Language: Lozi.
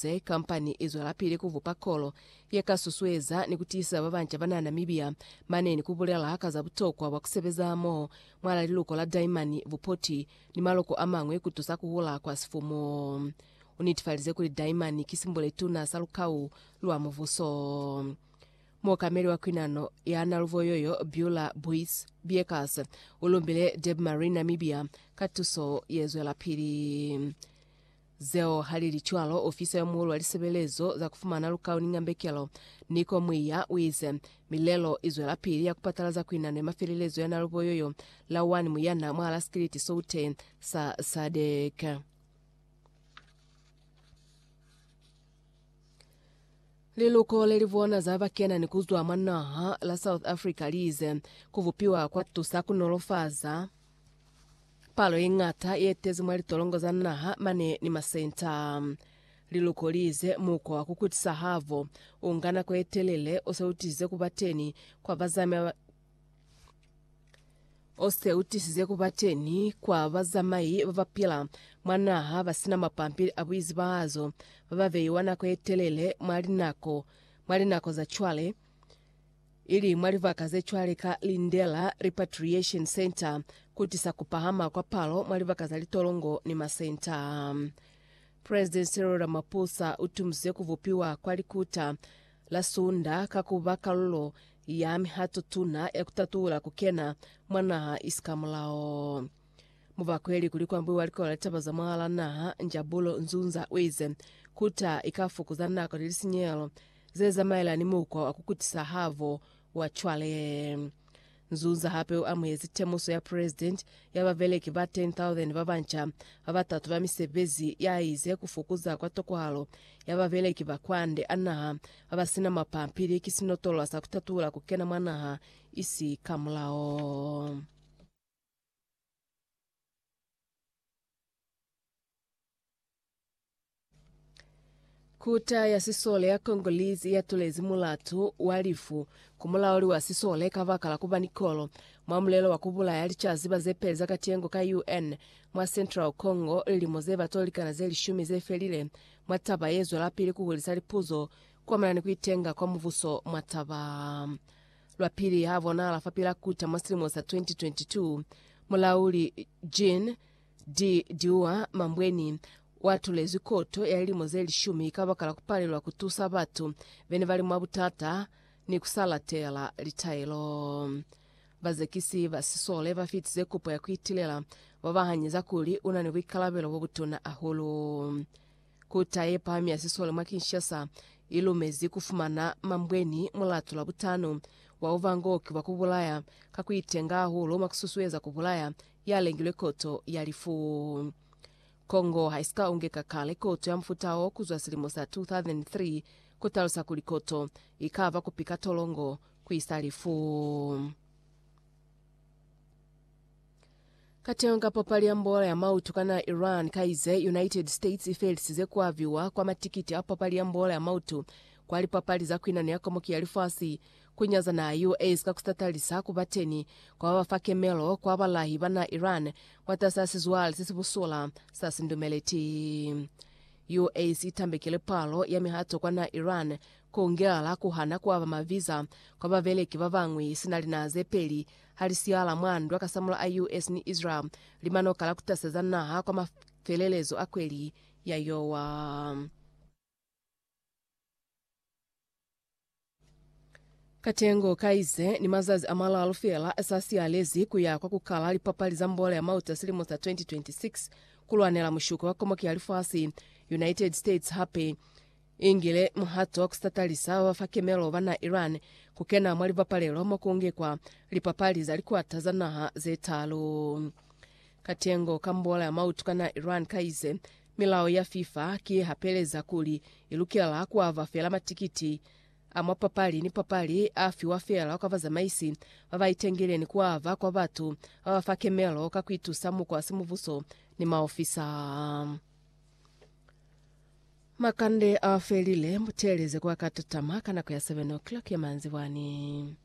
Ze kampani i zwelapili ku bupa kolo ye ka susueza ni ku tiisa ba banca ba na Namibia mane ni ku bulela ka za butokwa bwa ku sebeza amoho mwal'a liluko la daimani, bupoti, ni maloko a mañwi ku tusa ku hula kwa sifumu. U netifalize kuli daimani ki simbo le tuna sa lukau lwa mubuso. Muokameli wa kwinano ya Naluvo yo yo, Beulah Buys Biekas, u lumbile Debmarine Namibia ka tuso ye zwelapili. Zeo halili cwalo, ofisa yo muulu wa lisebelezo za kufumana lukau ni ñambekelo, Nico Muiya, uize, Milelo izwelapili ya kupatalaza kuinano ya mafelelezo ya nalubo yoyo la wani muyana mwahala sikiliti soute sa SADC. Liluko leli bona za bakena ni kuzwa mwa naha la South Africa liize, Kubupiwa kwatusa kunolofaza. Palo ye ñata ye tezi mwa litolongo za naha mane ni masenta. Li lukolize mukwa wa ku kutisa habo u nga nako ye telele o se u tisize ku ba teni kwa bazamai ba o se u tisize ku ba teni kwa bazamai ba ba pila mwa naha ba si na mapampili a buizibahazo ba ba beiwa nako ye telele mwa linako mwa linako za cwale. ili mwa libaka ze cwale ka Lindela Repatriation Centre, ku tisa ku pahama kwa palo mwa libaka za litolongo ni masenta. President Cyril Ramaphosa u tumize ku bupiwa kwa likuta la Sunda ka ku ba kalulo ya mihato tuna ya ku tatula ku kena mwa naha isikamulaho. Mu bakweli kuli kwambuiwa likola litaba za mwahala naha, Njabulo Nzunza uize, Kuta ikafukuza nako ni lisinyehelo zezamaelana ni mukwa wa kukutisa habo wa cwale. Nzunza hape uamuhezi temuso ya President ya babeleki ba 10,000 babanca babatatu ba misebezi yaize kufukuza kwa tokohalo ya babeleki ba kwande a naha babasina mapampili ki sinotolwa sa kutatuhula kukena mwa naha isi kamulao. Kota ya sisole ya Congolese ya tulezi mulatu wa lifu ku mulauli wa sisole ka baka la kuba ni kolo mwa mulelo wa kubulaya licaziba ze peli za katengo ka UN mwa Central Congo lilimo ze ba tolikana ze lishumi ze felile mwa taba ye zwelapili ku hulisa lipuzo kwamana ni ku itenga kwa mubuso mwa taba Lwa pili ha bonahala fa Pilakuta mwa silimo sa 2022, Mulauli Jean de Diua Mambweni wa tulezwi koto ya lilimo ze lishumi kabakala ku palelwa ku tusa batu bene bali mwa butata ni ku sa latela litaelo. Bazekisi ba sisole ba fitize kopo ya ku itilela, ba ba hanyeza kuli una ni buikalabelo bo butuna hahulu. Kota ye Pahami ya Siswale mwa Kinshasa i lumezi ku fumana mambweni mulatu Labutano wa uvangoki bwa ku bulaya ka ku itenga hahulu mwa ku susueza ku bulaya ya lengilwe koto ya lifu. Congo ha i si ka ungeka kale koto ya mufuta wo ku zwa silimo sa 2003, ku talusa kuli koto i ka ba ku pika tolongo ku isa lifu. Kateño ka papali ya mbola ya mautu ka naha Iran ka ize United States i felisize ku aviwa kwa matikiti a papali ya mbola ya mautu kwa lipapali za kwinano ya komoki ya lifasi, ku nyaza naha ya US ka ku tatalisa ku ba teni kwa ba fa kemelo kwa balahi ba naha Iran mwatas'a sizwale se si busola sa sindumeleti. US i tambekile palo ya mihato kwa naha Iran, ku ngela ku hana ku aba maviza kwa babeleki ba bañwi sina linaha ze peli Ha li siyala mwa ndwa kasamula a US ni Israel, lima n'o kala ku taseza naha kwa mafelelezo a kweli ya yowa. Katengo ka ize ni mazazi a malalu fela sa siyalezi ku ya kwa ku kala lipapali za mbolo ya mauta silimo sa 2026 ku lwanela mushuko wa komoki ya lifasi. United States hape Ingile muhato ku satalisa ba ba fa kimelo ba na Iran ku kena mwa libapalelo mo ku ngikwa lipapali za likwata za naha ze talu. Katengo ka mbola ya mautu ka na Iran ka ize, Milao ya FIFA ki ye hapeleza kuli i lukela ku ava fela matikiti a mwa papali ni papali a fiwa fela kwa bazamaisi ba ba itengile ni ku ava kwa batu ba ba fa kimelo ka ku itusa mukwa simubuso ni maofisa. Makande a felile, muteleze kwa katatama ka nako ya 7 o'clock ya manzibwani.